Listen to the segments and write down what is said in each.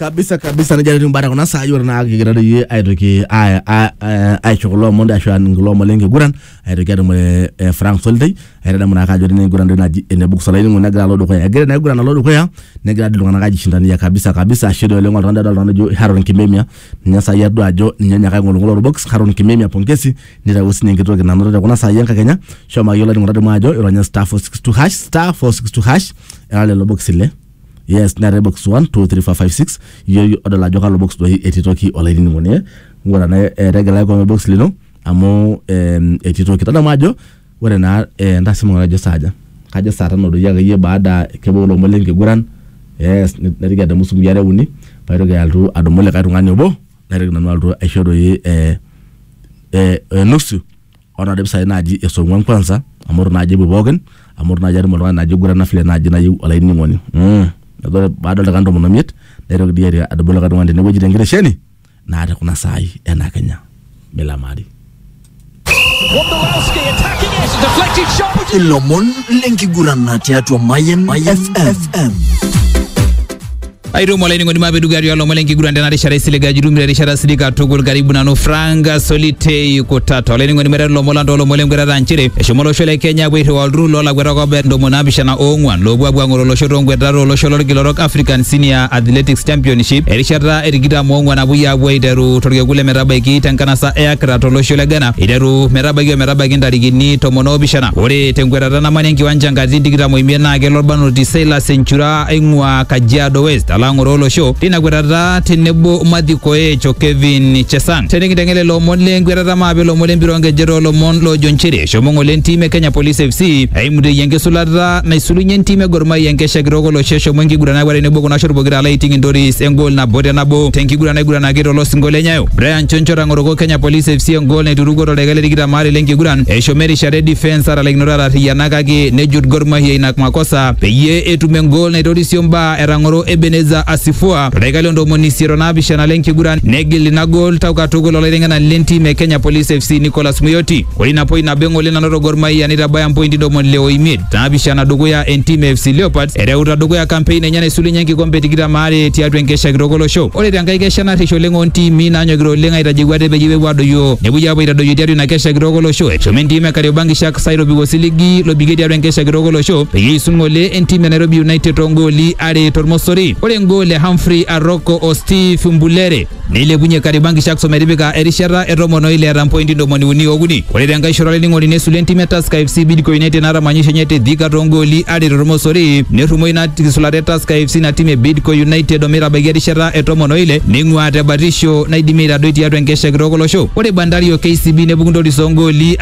kabisa kabisa nejia etiu imbaa tekuna saai ore naa kigira doi iyie aitoki a- a- a- aisho kulo omon doi ashu aning kulo omon lenkiguran aitoki atumore eh, Frank Solitei aitadamu naake ajo tini enkiguran doi naji ene Buku Solaining'o negira alo dukuya egira ina kiguran alo dukuya negira doi iltung'anak aijishindania kabisa kabisa ashe doi oleng oltung'ani doi adolta naijo Haron Kimemia ninye saai adua ajo ninye onyaaka aing'oling'ola orbox Haron Kimemia pongezi nitawuo sinye enkitoki nanoto tekuna saai enkakenya shomo akeyie olainining'oni tadamu ajo ironya star 462 hash star 462 hash era lelo bokisi le yes neetae box 1 2 3 4 5 6 iyoyu odol ajo kalo box doi etii toki olainining'oni eh? ng'ura naa eh, tegela kewon box lino amu em, etii toki tadamu ajo ore naa eh, entasima ng'ura ajo saaja kajo saa tano doi akeyie baada kebau ilomon lenkiguran yes naitoki adamu sumui are uni paitoki alotu adumu likae tung'ani obo naitoki nanu alotu aisho doi eh, eh, eh, nusu ore naadi mpisai naaji esong'uan kwanza amu itu naaji epuo pookin amu itu naaji atum oltung'ani naaji oigurana vile naaji nayieu olainining'oni mm. Neeku ore baada oldaikani tomon omiet naitoki dii airo adumu likae tung'ani tenewueji tenkitesheni naa te kuna saai ena kenya milamari Wondolowski attacking it, deflected shot. ilomon lenkiguran tiatua Mayen FM. aitomo olainining'oni mapedugari olomon lenkiguran tena rishata isiliga jitum te rishata sidai katukul karibu nanu Frank Solitei Kutata olainining'oni meteru lomon lang toolomon lenkwetata nchere eshomo olosho le Kenya apuo airriwaa olturrur loolakweta kobet ntomoni naapishana oong'wan loopuo apuo ang'oro olosho toonkwetata olosho lolkila orok African Senior Athletics Championship erishata e tikitam oong'wan napuoi apuo aiteru torkekun le metabaiki tenkanasa e Accra tolosho le Ghana iteru metabaiki ometabaiki ntarikini tomon oopishana ore tenkwetata namanya enkiwanja nkatitin tikitam oimiet naa kelo Olbarnoti Silas Enchura aing'uaa Kajiado West alo ang'oroo olosho tina kwetata tenebo Matthew Koech o Kevin Chesang. Tenikinteng'en lelo omon le nkwetata maape ilomon le mpira onkejek too lomon loojo nchere eshomo ng'ole entim e Kenya Police FC aimuteyie enkisulata naisulunye entim e Gor Mahia enkesha kitok olosho eshomo enkiguran akwet tenebo kuna shot pokira alo aiting Intoris engol nabo te nabo tenkiguran naiguranaki to losinko le Nyayo. Brian Choncho otang'oroko Kenya Police FC engol naiturukuo toldaika le tikitam aare le nkiguran eshomo erishata e defence atalaikinoto atarriyiana kake nejut Gor Mahia ina makosa peyie etum engol naitorisio mbaa etang'oro Ebeneza Asifua toldaika le ntomoni isiet o naapishana le nkiguran negil ina gol tau katukul olaiteng'enani le ntim e Kenya Police FC Nicholas Muyoti. Ore ina poi nabo eng'ole nanoto Gor Mahia neitabaya mpointi ntomoni ile o imiet naapishana dukuya entim e FC Leopards ereuta dukuya kampein enye naisulunye enkikombe tikitam aare tiatua enkesha kitok olosho. Ore tenkae kesha narrish oleng oo ntiimi naanyokita oleng aitajeu ate peyie epuo adoyio nepuoi apuo aitadoyio tiatua ina kesha kitok olosho eshomo entim e Kariobangi Sharks Sai lobiko siligi lobikie tiatua enkesha kitok olosho peyie eisul ng'ole entim e Nairobi United toongooli are tormosori. Ore engool e Humphrey Aroko o Steve Mbulere neilepunye Kariobangi Sharks ometipika erishata e tomon o ile eeta mpointi ntomoni uni ookuni. Ore tenkae shoto olainining'oni nesul entim e Tusker FC Bidco United naata manyisho enye te Thika toongooli are tormosori. Nerrumo ina kisulata e Tusker FC ina tim e Bidco United ometabaiki erishata e tomon o ile neing'uaa te batisho naidimi aitadoi tiatua enkesha kitok olosho. Ore Bandari o KCB nepuku ntoris oongooli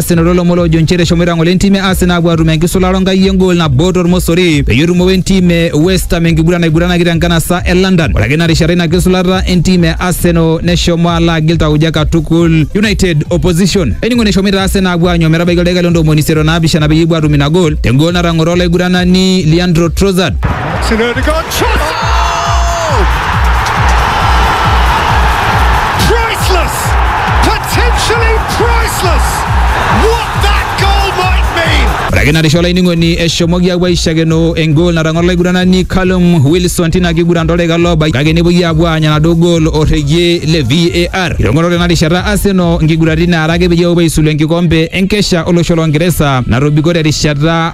Arsenal olomon loojo nchere eshomoita ng'ole entim e Arsenal apuo atum enkisulata onkai engol nabo tormosori peyie etumo entim e West Ham enkiguran naiguranaki tenkanasa e London. Ore ake ina rishata ina kisulata entim e Arsenal neshomo alo agil tauja katukul United opposition. Ening'o neshomoita Arsenal apuo aanyu metabaiki oldaika le ntomoni isiet o naapishana peyie epuo atum ina gol tengol natang'oro olaiguranani Leandro Trossard. Martin Ødegaard, shot! Oh! Priceless! Potentially priceless! What that goal might mean! Ore ake narisho olainining'oni eshomoki apuo aishakeno engol natang'oro olaiguranani Callum Wilson tina kiguran toldaika loobaiki kake nepuoi apuo aanya enaduo gol orregie le VAR. Itong'oro tena rishata Arsenal nkiguraritin naara ake peyie epuo aisulu enkikombe enkesha olosho loo Ngeresa natobiko terishata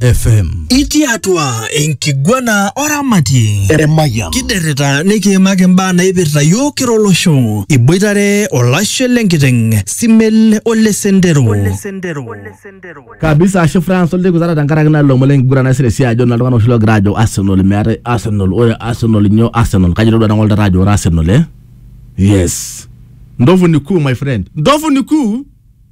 FM. Itii atua enkiguana oramatie Emayian. kiderrita nikiimaki imbaa naipirta yiok kira olosho iboitare olashe lenkiteng simel ole sendero kabisa ashe France olteki zara tenkaraki naa lomon lenkiguran nasira esiai ajo naa iltung'anak oshi loogira ajo Arsenal meetae Arsenal ore Arsenal nyoo Arsenal kajo itodua nang'ol taata ajo ore Arsenal eh yes ndovu ni kuu my friend ndovu ni kuu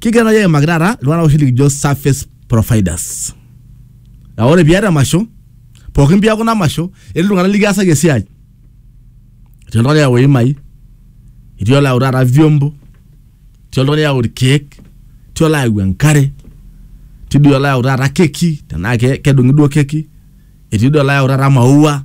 Kigira naaji aimaki taata iltung'anak oshi likijo service providers. Naa ore piata emasho, pookin piaku ina masho, etii iltung'anak likiasaki esiai. Etii oltung'ani oyau iimai, etii olayau taata vyombo, etii oltung'ani oyau irkeek, etii olayau enkare, etii doi olayau taata keki tenaa ke kedung'i duo keki, etii doi olayau taata maua.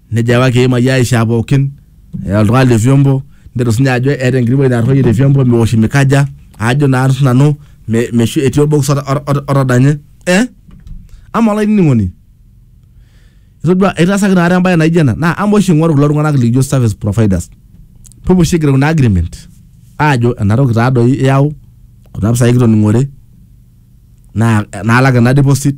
Nejo apa kiimai aishaa pookin eh, oltung'ani le vyombo netu sinye ajo eeta enkiti wueji natorroyie te vyombo meosh mikaja ajo naa nanu me- meshu etii olbokis ota- ota- ota- otadanye eh? ama olainining'oni itodua itaasaki naata embaye naijo ena naa ama oshi ing'oru kulo tung'anak likijo service providers pupu oshi igero kuna agreement aajo enatoki taadoi iyau kuna pisai kitoning'ore naa naalak ena deposit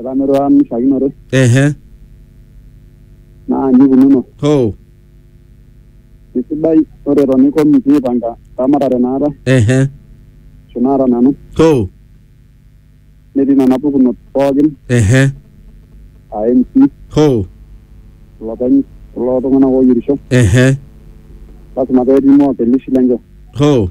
Etaa meirura mishakinore ehe naa nikununo. ho Eisidai ore eton iko mikiipanga ramatare naata ehe ashu naata nanu ho netii nena pukunot pookin ehe aa MC, ho ilopeny kulo tung'anak ooyierisho ehe lasima petii moakelishi lenche. ho